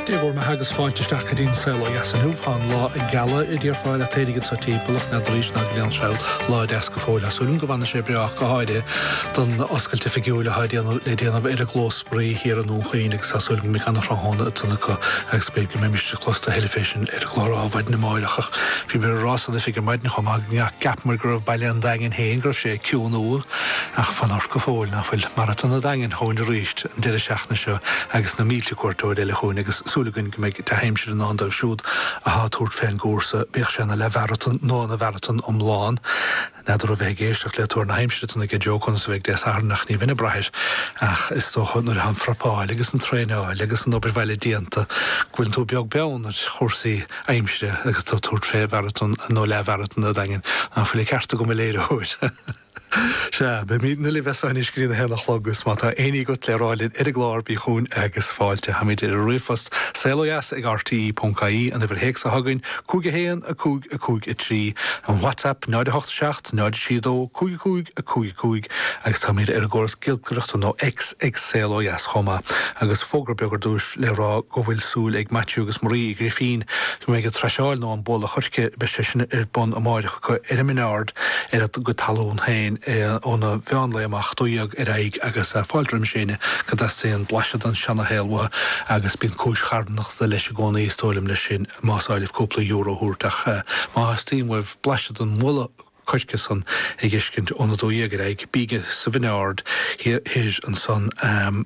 Dé bhur mbeatha agus fáilte isteach go dtí an saol ó dheas inniu. Tá an lá ag gealadh i dTír Fáile ach éirigh anseo timpeall nead arís ná go lean saol lá a deas go fóill. Tá súil agam go bhfanfaidh sé breágh go háirithe don oscailt oifigiúil atá le déanamh ar an gclós spraoi thiar i nDún Chaoin agus tá súil agam go mbeidh an-thráthnóna ag dul acu agus b'fhéidir go mbeidh Misneach closta thoir fé sin ar an gclár ar maidin amáireach ach bhíomair á rá san oifig ar maidin chomh maith gur cheapamair go raibh Baile an Daingin fhéin go raibh sé ag ciúnú ach fan ort go fóill nach bhfuil Maratón an Daingin chugainn arís. an deireadh seachtaine seo agus na mílte cuairteoir eile chugainn agus súil againn go mbeidh dea-aimsir i ndán dóibh siúd atá ag tabhairt fén gcúrsa, bíodh sé ina leath-mharatón nó ina mharatón iomlán, n'fheadar a bheith ag éisteacht le tuar na haimsire san aige Joe conas a bheidh Dé Sathairn ach ní bheinn ag braith air ach is dócha nuair atá an phreipeáil agus an traenáil agus an obair bhaile déanta go bhfuil tú beag beann ar chúrsaí aimsire agus tú ag tabhairt fé mharatón nó leath-mharatón an Daingin ná fuil an ceart agam a léiritheoir. Sea, beimid in éineacht libh as so anois go dtí an a haon a chlog agus má tá éinní agat le rá linn ar an gclár, bí chugainn agus fáilte. Táimid ar an ríomhphost, saol ó dheas ag rte.ie, an uimhir théacs atá againn, 5 1 5 5 3, an WhatsApp, 0 8 7 0 6 2 5 5 5 5, agus táimid ar an gcóras giolcaireachta nó X ag Saol Ó Dheas chomh maith. Agus fógra beag ar dtúis, le rá go bhfuil súil ag Maitiú agus Marie Uí Ghrifín go mbeidh an traiseáil nó an bualadh choirce, beidh sé sin ar bun amáireach acu i Min Aird ar a gcuid talún féin óna mheánlae amach, dó dhéag ar aghaidh agus fáilte roimis éinne go dteastaíonn blaiseadh den seanashaol uathu agus bíonn cúis charthanachta leis i gcónaí, is dóigh liom, leis sin, más áil libh cúpla euro a thabhairt ach má theastaíonn uaibh blaiseadh den mbualadh coirce san a dh'fheiscint óna dó dhéag ar aghaidh, bígí sa Mhin Aird thoir ansan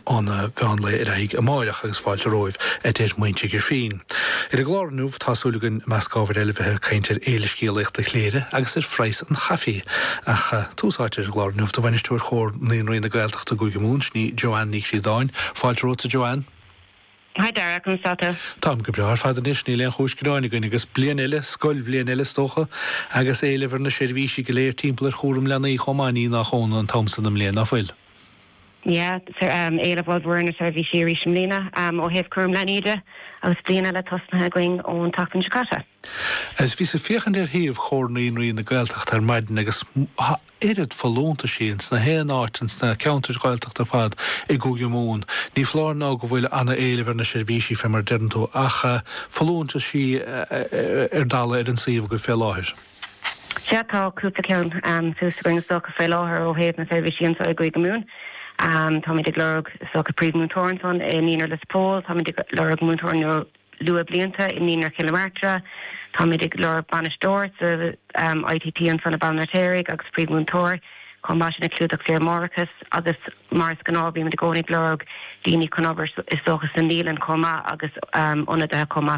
óna mheánlae ar aghaidh amáireach agus fáilte romhaibh, a deir muintir Ghrifín. Ar an gclár inniu, tá súil againn, i measc ábhair eile, bheith ag caint ar Fhéile Scéalaíochta Chléire agus ar phraghas an chaifé. Ach tús áite ar an gclár inniu do Bhainisteoir Chomhar Naíonraí na Gaeltachta i gCúige Mumhan, sin í Joanne Ní Chríodáin. Fáilte romhatsa, Joanne. Hi Dara, conas atá tú? Táim go breá ar fad anois, níl aon chúis gearáin againn agus bliain eile, scoilbhliain eile is dócha, agus éileamh ar na seirbhísí go léir timpeall ar chúram leanaí chomh maith, ní nach ionadh an t-am so den mbliain, nach bhfuil? Yeah, éileamh ollmhór ar na seirbhísí arís i mbliana ó thaobh cúram leanaí de agus bliain eile tosnaithe againn ón tseachtain seo caite. Is bhíos ag féachaint ar shuíomh Chomhar Naíonraí na Gaeltachta ar maidin agus tá oiread folúntaisí ins gach aon áit ins na ceantair Ghaeltachta ar fad i gCúige Mumhan. Ní foláir nó go bhfuil an-éileamh ar na seirbhísí fé mar deireann tú ach folúntaisí ar dalladh ar an suíomh agaibh fé láthair. Sea, tá cúpla ceann thuas againn is dócha faoi láthair ó thaobh na seirbhísí anseo i gCúige Mumhan. Táimid ag lorg is dócha Príomh Múinteoir ansan i Naíonra Lios Póil, táimid ag lorg Múinteoir nó Luathbhlianta i Naíonra Chill na Martra, táimid ag lorg Bainisteoir sa ITT ansan i mBaile an Fheirtéaraigh agus Príomh Múinteoir chomh maith sin ag Clúdach Saoire Mháithreachais agus mar is gnáth bímid i gcónaí ag lorg daoine chun obair is dócha sa naíolann chomh maith agus ionadaithe chomh maith.